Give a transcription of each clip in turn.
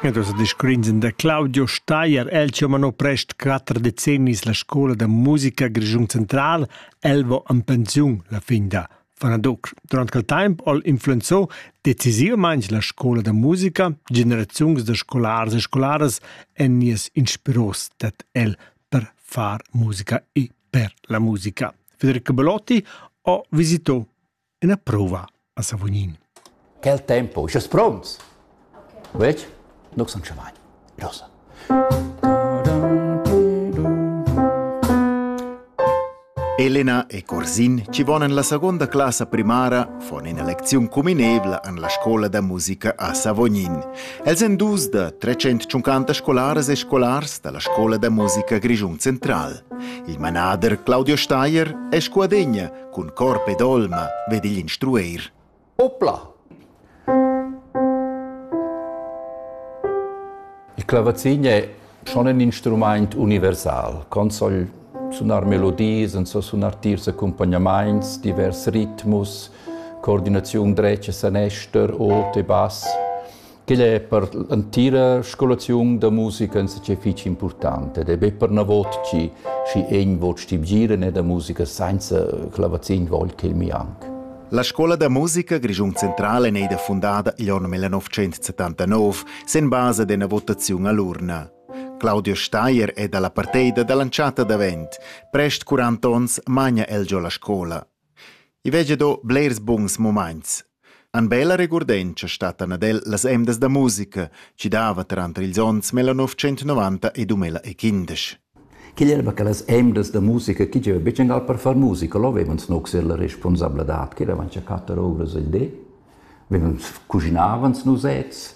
Ed els descrignan da Claudio Steier, el che mano prest quatter decennis la scola da musica Grischun Central, Elvo en pensiun la fin da Fanadoc. Durant quel temp ol influenzò decisivamente la scola da musica, generaziuns da scolars e scolaras en nies inspiros dat el per far musica e per la musica. Federico Belotti ho visitò ina prova a Savognin. Quel tempo, sche pronts? Vec, nuk sun chavagn. Rosa. Elena e Corsin ci vonan la seconda classa primara von ina lecziun cuminevla an la scola da musica a Savognin. Els en dus da 350 scolaras e scolars dalla scola da musica Grischun Central. Il manader Claudio Steier è scuadegna Cun corp ed olma vegn igl instrueir. Opla! Il clavazin è schon in instrumaint universal. Con soll sunar melodies, en so sunar tiers accompagnamaints, divers ritmus, coordinaziun dretg e sanester, ot e bass. Quel è per l'entira scolaziun da musica insatge fitg impurtant ed è be pernavot chi schi egn vot stibgiren e da musica sainza clavazin vogl ch'el mi anc. La scola da musica Grischun Central è neida fundada igl onn 1979 sen basa d'ena votaziun all'urna. Claudio Steier è dalla parteida dall'entschatta davent. Prest 40 onns magna el giò la scola. I vegia do blers buns mumaints. An bella regurdentscha stattan ad el las emdas da musica chi dava tranter ils ons 1990 e 2015. Quel era che las emdas da musica chi gieva be gingal per far musica, lo vevans no ser la responsabladad, che eravans a quatter ovras al di, vevans cuginavans nusets,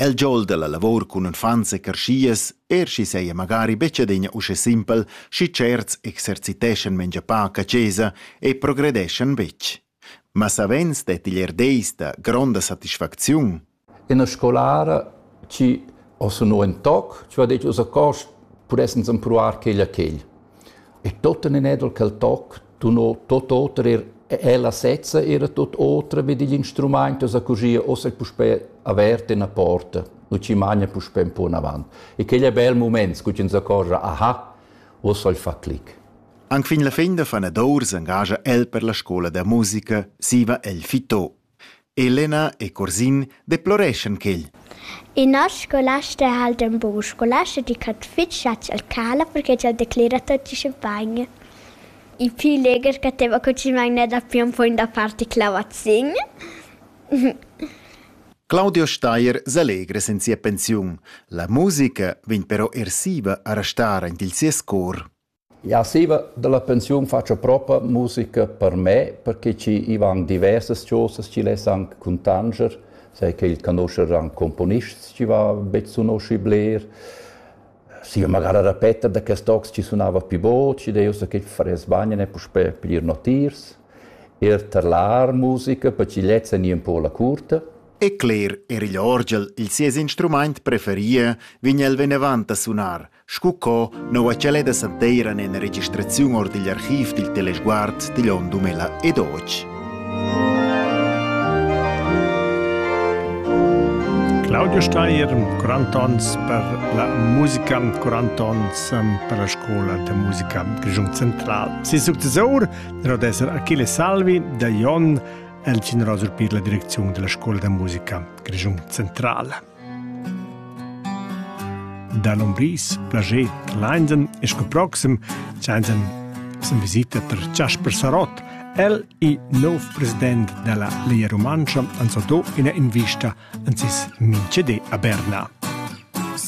El giol dalla lavor cun uffants e carschias, er sch'i seia magari betg adina uschè simpel, schi certs exerciteschan mengia pac a chesa e progredeschan betg. Ma savens detti er deis da gronda satisfacziun. Ina scolara chi ho sunu ün toc, chi ho det, uss a cost pudessans empruar quel a quel. E tuottena nedel quel toc tuno tuot oter eir ella sezza era tuot oter vi digl instrumaint e sa cusgia ussa puspè avert üna porta. Nu chi magna puspè ün po anavant. E quel è bel mument, scu chi ins accorgia, aha, uossa il fa clic. Anc fin la fin da fanadour s'engagia el per la scola da musica, siva el fito. Elena e Curzin deploreschan quel. In noss scolasta ha el d'ün bun scolasta di ch'ha fich chatsch al cala perché ch'el declera tuottücha bain. I pü legher che teva cucinà gnè dapü ün poin da parti clavazin. Claudio Steier s'allegra sen sia pensiun. La musica vegn però ersiva a restar aint il sies cor. Jau stiva da la pensiun fatscha propa musica per me, perche chi i van diversas chosas chi less anc cuntanscher, sai che il conoscher anc componists chi va be sunoschi bler. Stiva magari a repeter da quest tocs chi sunava pi bod, schi deu so che faress bagn e puspè piglier notiers. Er tar l'art musica, per chi lezza gnir un po la curta. E cler, er igl orgel, il sies instrumaint preferie, vign el venevant a sunar, Scu co noua ch'el è da santeira ena registraziun or digl archiv dil Telesguard digl onn 2012. Claudio Steier, curantons per la musica, curantons per la scola de musica Giung Central. Si successor dero d'esser Achille Salvi da Jon el generoso per la direczione della scuola de musica Giung Central. Da l'umbris plager Lainden e sco proxim sainza sin visita tar Jasper Sarott. El è nov president della Lia Romancia han so do ina invista an sis min CD a Berna.